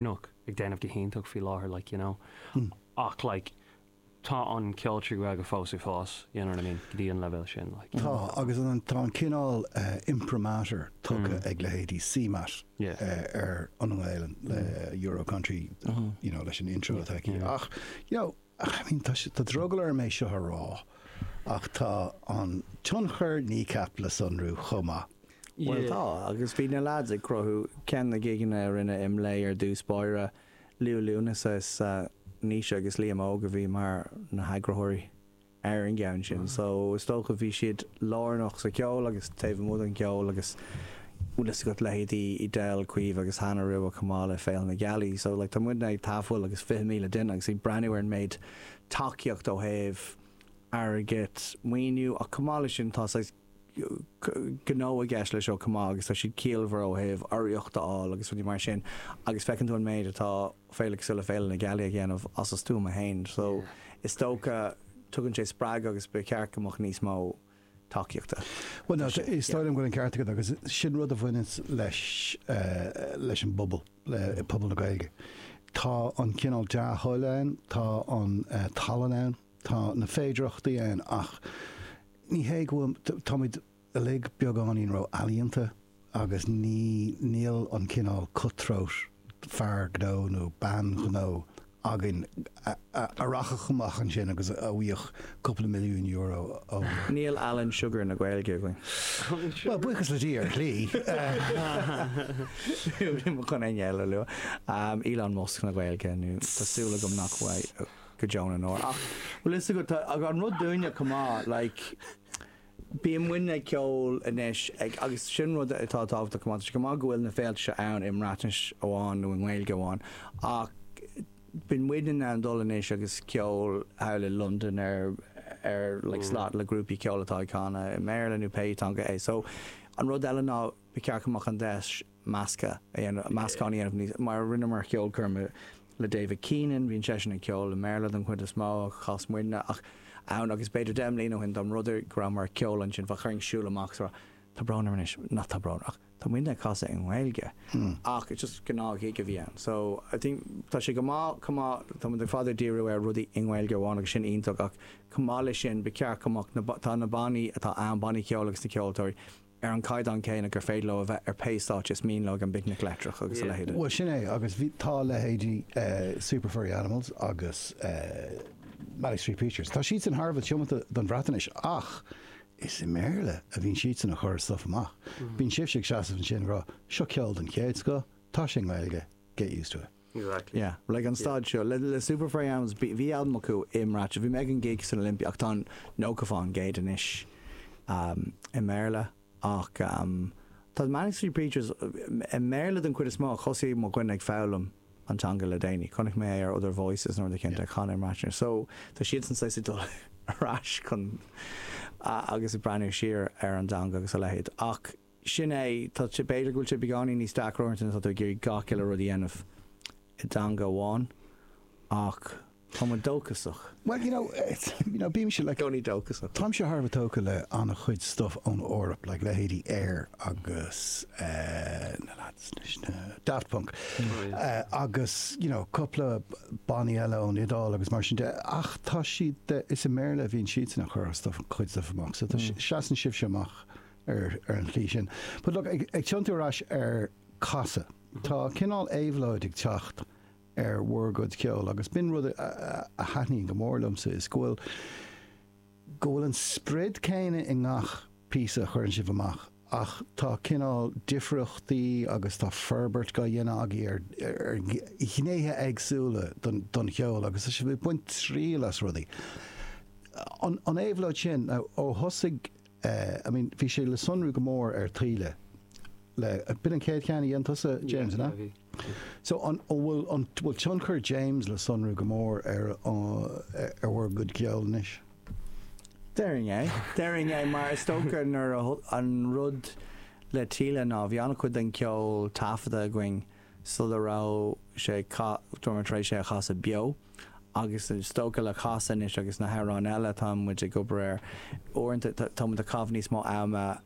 Kneecap ag déanamh go hiontach faoi láthair like you know ach like tá an ceol trí Ghaeilge fós ag fás you know what I mean go dtí an leibhéal sin like you know. Tá agus an tá an cineál imprimatur tugtha ag leithéidí CMAT Yeah. ar an nGaolainn le Euro Country you know leis an intro atá aici yeah ach you know. I mean, tá sé, tá drogall orm é seo a rá ach tá an tionchar Kneecap le sonrú chomh maith. Bhuel tá, agus bhí na lads ag cruthú ceann na gigeanna a rinneadh i mBleá ar dtús báire, Liú Lúnasa is ea Naoise agus Liam Óg a bhí mar na heagraitheoirí ar an gceann sin so is dócha bhí siad lárnach sa cheol agus taobh amuigh den cheol agus bhfuil fhios agat leithéidí Edel, Caoimh agus Hannah Rua chomh maith le Féile na Gealaí. So like tá muidne ag tafail agus 20,000 duine agus ag breathnú ar an méid tacaíocht ó thaobh airgead, maoiniú ach chomh maith leis sin tá saghas gnó i gceist leis seo chomh maith agus tá siad ciallmhar ó thaobh urraíocht a fháil agus rudaí mar sin agus feiceann tú an méid atá féile cosúil le Féile na Gealaí ag déanamh as a stuama fhéin. So is dócha tugann sé spreagadh agus ba cheart go mbeadh níos mó. tacaíochta. Bhuel, tá sé, is dóigh liom go bhfuil an ceart agat agus sin rud a bhaineanns leis, leis an bpobal, pobal na Gaeilge. Tá an cineál dea-thoil ann, tá an tallann ann, tá na féidearthachtaí ann ach ní hé go bhfuil, táimid uilig beagáinín ró-ealaíonta. agus ní, níl an cineál cut throat fear gnó nó bean ghnó againn a rachadh amach ansin agus a bhfaigheadh cúpla milliún euro ó. Níl Alan Sugar na Gaeilge againn. Bhuel, buíochas le Dia, ar shlí. Níl mé chun éinne eile a lua. Elon Musk na Gaeilge nó tá súil agam nach bhfuil go deo na ndeor. Ach bhfuil fhios agat, tá an rud dúinne chomh maith, like, Bíonn muidne ag ceol anois ag agus sin rud atá tábhachtach chomh maith. Tá sé go maith go bhfuil na féilte seo ann i mBreatnais amháin nó i nGaeilge amháin ach bíonn muidne in ann dul anois agus ceol thall i Londain ar ar like slot le grúpaí ceoil atá ag canadh i mBéarla nó pé teanga é. So an rud eile ná ba cheart go mbeadh an deis, measctha a dhéanamh, meascán a dhéanamh níos, mar rinneamar ceolchoirm le David Keenan, bíonn seisean ag ceol i mBéarla den chuid is mó, chas muidne ach ann agus b'fhéidir deich mbliana ó shin dá mb'fhéidir go rabhamar ag ceol ansin bheadh orainn siúl amach so tá brón orm anois, nach tá brón ach tá muidne ag casadh i nGaeilge ach just gnáth-ghig a bhí ann so I think tá sé go maith chomh maith, tá muid go fada ag díriú ar rudaí i nGaeilge amháin agus sin iontach ach chomh maith leis sin ba cheart go mbeadh na, tá na bannaí atá ann, bannaí ceoil agus na ceoltóirí, ar an gcaighdeán céanna gur féidir leo a bheith ar pé stáitse is mian leo ag an bPicnic Leictreach agus a leithéid. Bhuel sin é agus bhí, tá leithéidí Super Furry Animals agus Manic Street Preachers, tá siadsan thar a bheith tiomanta don Bhreatnais ach is i mBéarla a bhíonn siadsan a chur a stuif amach. Bíonn sibhse ag seasamh ansin ag rá 'seo ceol den chéad scoth, tá sé i nGaeilge, get used to it'. Like an staid seo le Super Furry Animals bhí albam acu i mBreatnais, bhí mé ag an gig san Olympia ach tá nócha faoin gcéad anois i mBéarla ach tá Manic Street Preachers i mBéarla den chuid is mó ach thosaigh mo dhuine ag foghlaim an teanga le déanaí, chonaic mé é ar Other Voices nó rud éicint a chan i mBreatnais so tá siadsan saghas ag dul ar ais chun agus ag breathnú siar ar an dteanga agus a leithéid ach. Sin é. Tá, b'fhéidir go bhfuil sé beagáinín níos deacra uaireanta nuair atá tú ag iarraidh gach uile rud a dhéanamh i dteanga amháin ach tá muid dóchasach. Bhuel, you know, bímse, like, gcónaí dóchasach. Táimse thar a bheith tógtha le an-chuid stuff ón Eoraip, like, leithéidí Air agus eh na lads leis na, Daft Punk, eh agus, you know, cúpla bannaí eile ón Iodáil agus mar sin de ach tá siad, is i mBéarla a bhíonn siadsan a' chur a' stuff, cuid stuff amach so tá, seasann sibhse amach ar an tslí sin. But look, ag ag tiontú ar ais ar Casadh, tá cineál éabhlóid ag teacht ar bhur gcuid ceoil agus b'in rud a a thaitníonn go mór liomsa is go bhfuil go bhfuil an sprid céanna i ngach píosa a chuireann sibh amach ach tá cineál difríochtaí agus tá forbairt gá dhéanamh agaibh ar ar ghnéithe éagsúla don don cheol agus tá sibh ag baint triail as rudaí. An an éabhlóid sin, now ó thosaigh Eh I mean bhí sé le sonrú go mór ar Taoille le, b'in an chéad cheann a dhein tusa James, an ea? Yeah, bhí, bhí. So an bhfuil an, bhfuil tionchar James le sonrú go mór ar an, ar bhur gcuid ceoil anois? Déarfainn é, déarfainn é mar is dócha nuair a, an rud le Taoille ná bhí an-chuid den cheol taifeadta againn sula raibh sé ag ca, tá muid tar éis é a chasadh beo. Agus is dócha le Casadh anois agus na hamhráin eile atá muid ag obair air, uaireanta tá muid ag caitheamh níos mó ama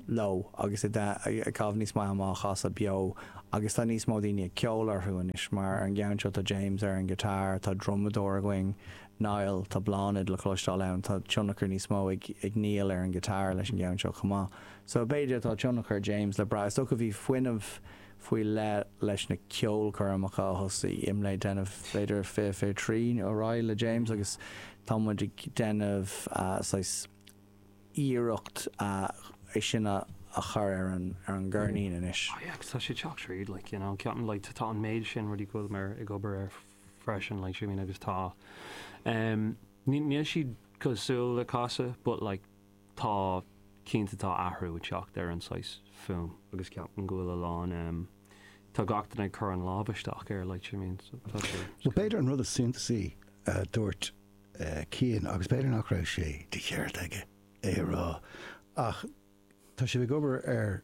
leo agus ag caitheamh níos mó ama á chasadh beo agus tá níos mó daoine ag ceol orthu anois mar ar an gceann seo tá James ar an guitar, tá drumadóir againn, Niall, tá Bláthnaid le cloisteáil ann, tá tionchar níos mó ag Neil ar an guitar leis an gceann seo chomh maith so b'fhéidir tá tionchar James le brath, is dócha bhí fuinneamh. faoi leith leis na ceolchoirmeacha a thosaigh IMLÉ ag déanamh b'fhéidir fiche fiche trí nó ar aghaidh le James agus tá muid ag déanamh saghas iarracht é sin a a chur ar an ar an gceirnín anois. Oh yeah, 'cause tá sé ag teacht tríd like you know ceapaim like tá tá an méid sin rudaí go bhfuil mé ag obair air freisin like see what I mean agus tá em ní níl siad cosúil le Casadh but like tá, cinnte tá athrú ag teacht ar an saghas fuaim. agus ceapaim go bhfuil a lán, tá gach duine ag cur a lámh isteach air like you mean so tá sé, it's Bhuel, b'fhéidir an rud is suntasaí a dúirt Cian, agus b'fhéidir nach raibh sé de cheart aige é a rá, ach tá sibh ag obair ar.